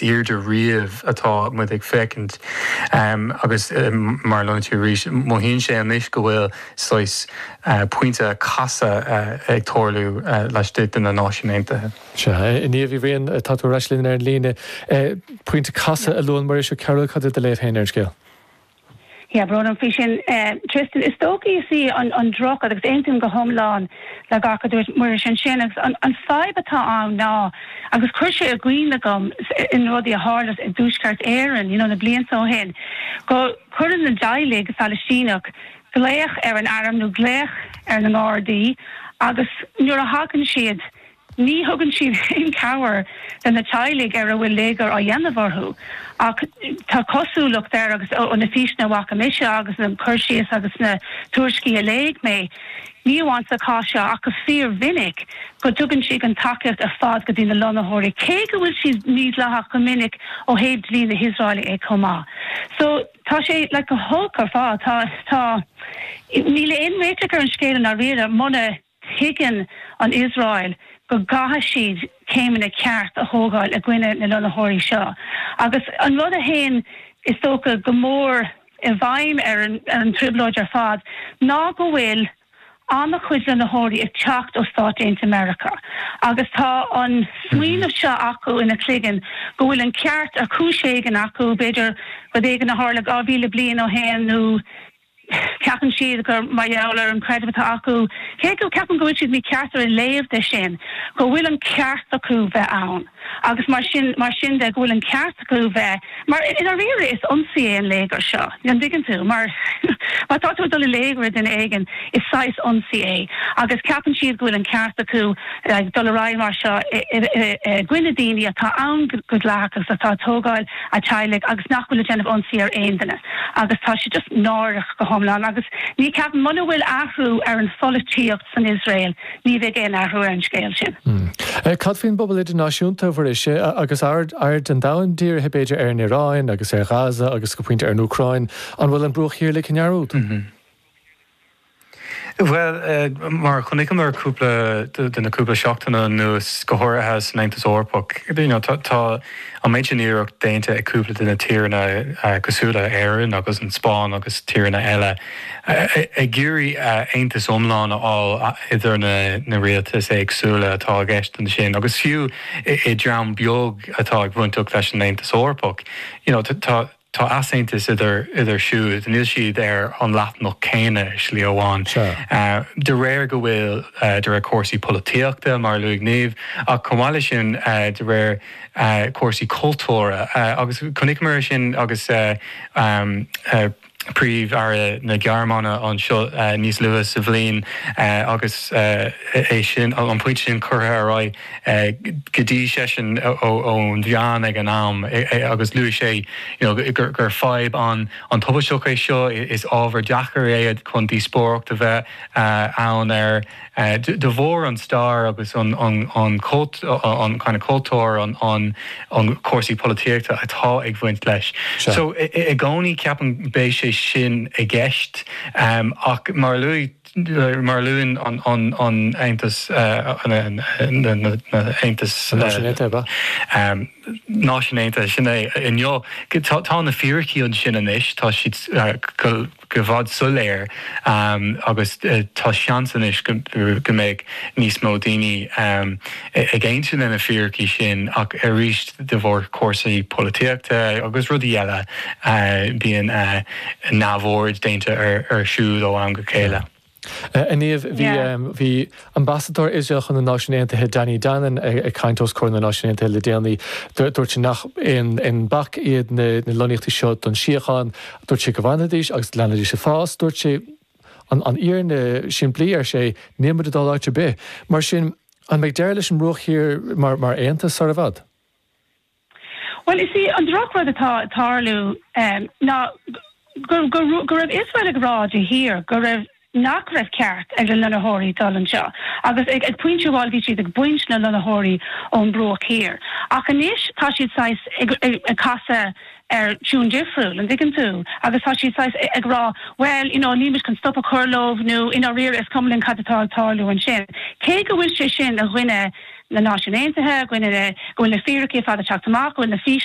airde riamh atá muid ag féachaint agus mar a luaigh tú arís, mothaíonn sé anois go bhfuil saghas pointe casadh ag tarlú laistigh de na Náisiúin Aontaithe. Sea, a Niamh Uí Bhriain, tá tú ar ais linn ar an líne. Pointe casadh a luann Muiris Ó Cearbhaill, cad é do léamh féin ar an scéal? Yeah, brón faoi sin Tristan. Is dócha is í an drochrud, agus aontaím go hiomlán le gach a dúirt Muiris ansin, agus an fadhb atá ann ná, agus chuir sé i gcuimhne agam in rudaí a tharla i dTuaisceart Éireann, you know, na blianta ó shin, go cuireann na dteaghlaigh Phalaistíneach glaoch ar an airm nó glaoch ar na nGardaí agus nuair a thagann siad, Ní thugann siad aon chabhair do na teaghlaigh ar a bhfuil léigear á dhéanamh orthu ach tá cosúlacht air agus sna físeanna a bhfaca mise agus na cur síos agus na tuairiscí a léigh mé, ní amháin sa chás seo ach go fíor-mhinic, go dtugann siad an tacaíocht ar fad go dtí na lonnaitheoirí, cé go bhfuil siad mídhleathach go minic ó thaobh dlí na hIosraele chomh maith. So tá sé like go holc ar fad. Tá, tá, níl aon réiteach ar an scéal i ndáiríre muna. Tuigeann an Iosrael go gcaithfidh siad céimeanna ceart a thógáil i gcoinne na lonnaitheoirí seo agus an rud a théann is dócha go mór i bhfeidhm ar an trioblóid ar fad ná go bhfuil an-chuid lonnaitheoirí ag teacht ó Stáit Aontaithe Meiriceá agus tá an smaoineamh seo acu ina gcloigeann go bhfuil an ceart ar chúis éigin acu, b'fhéidir rud éigin a tharla dhá mhíle bliain ó shin nó. Ceapann siad gur mar gheall ar an chreideamh atá acu, cé ceapaim go bhfuil siad mícheart ar a léamh de sin, go bhfuil an ceart acu bheith ann agus mar sin mar sin de go bhfuil an ceart acu bheith mar i ndáiríre is ionsaí é an léigear seo, an dtuigeann tú? Mar má tá tú ag dul i léigear ar duine éigin is saghas ionsaí é agus ceapann siad go bhfuil an ceart acu dul ar aghaidh mar seo i gcoinne daoine atá ann go dleathach agus atá ag tógáil a teaghlaigh agus nach bhfuil ag déanamh ionsaí ar aon duine agus tá sé just náireach go hiomlán agus ní ceapaim muna bhfuil athrú ar an pholaitíocht san Iosrael ní bheidh aon athrú ar an scéal sin. Cad faoin bpobal idirnáisiúnta a Mhuiris agus aird an domhain dírithe b'fhéidir ar an Iaráin agus ar Ghaza agus go pointe ar an Úcráin, an bhfuil an Bruach Thiar le himeallú? Bhuel, mar a chonaiceamar cúpla de na cúpla seachtaine anuas, go háirithe san Aontas Eorpach, tá an méid sin iarracht déanta ag cúpla de na tíreanna cosúil le hÉirinn agus an Spáinn agus tíreanna eile ag iarraidh aontas iomlán a fháil idir na rialtais éagsúla atá i gceist ansin agus fiú i dtreo beag atá ag baint leis an Aontas Eorpach. Tá easaontas idir iad siúd. Níl siad ar an leathanach céanna i slí amháin. De réir go bhfuil, de réir cúrsaí polaitíochta, mar a luaigh Niamh, ach chomh maith leis sin, de réir cúrsaí cultúir. Agus chonaiceamar sin agus Príomh-Aire na Gearmáine anseo níos luaithe sa bhliain agus é sin, an pointe sin curtha ar aghaidh. Go dtí seisean ó na meáin ag an am agus luaigh sé gur fadhb an-tubaisteach é seo, is ábhar deacair é chun díospóireacht a bheith ann air. De bharr an stair agus an kind of cultúr, na cúrsaí polaitíochta atá ag bhaint leis. So i gcónaí ceapaim beidh sé sin i gceist ach mar a luaigh. mar a luann an aontas, aontas Náisiún Aontaithe, sin é inniu. Tá na fíricí ansin anois, tá siad go bhfuil soiléir agus tá seans anois go mbeidh níos mó daoine. ag aontú leis na fíricí sin ach arís de bharr cúrsaí polaitíochta agus rudaí eile bíonn neamhaird déanta ar siúd ó am go chéile. A Niamh, bhí bhí Ambasadóir Iosrael chun na Náisiún Aontaithe, Danny Danon, ag caint os comhair na Náisiún Aontaithe le déanaí. Dúirt sé nach aon bac iad na lonnaíochtaí seo don síocháin. Dúirt sé go bhfanfaidís agus leanfaidís ag fás. Dúirt sé. An fhírinne shimplí, ar sé, níl muid ag dul áit ar bith. Mar sin, an mbeidh deireadh leis an mbruach thiar mar aonad sar i bhfad? Bhuel, is é an drochrud atá ag tarlú ná go raibh Iosrael ag rá de shíor go raibh nach raibh ceart ag na lonnaitheoirí dul anseo agus ag pointe amháin bhí siad ag baint na lonnaitheoirí ón mbruach thiar ach anois tá siad saghas ag casadh ar tiúin difriúil, an dtuigeann tú, agus tá siad saghas ag rá bhuel you know níl muid chun stop a chur leo nó i ndáiríre is cuma linn cad atá ag tarlú ansin. Cé go bhfuil sé sin i gcoinne na Náisiún Aontaithe, i gcoinne na, go bhfuil na fíricí ar fad ag teacht amach, go bhfuil na físeanna,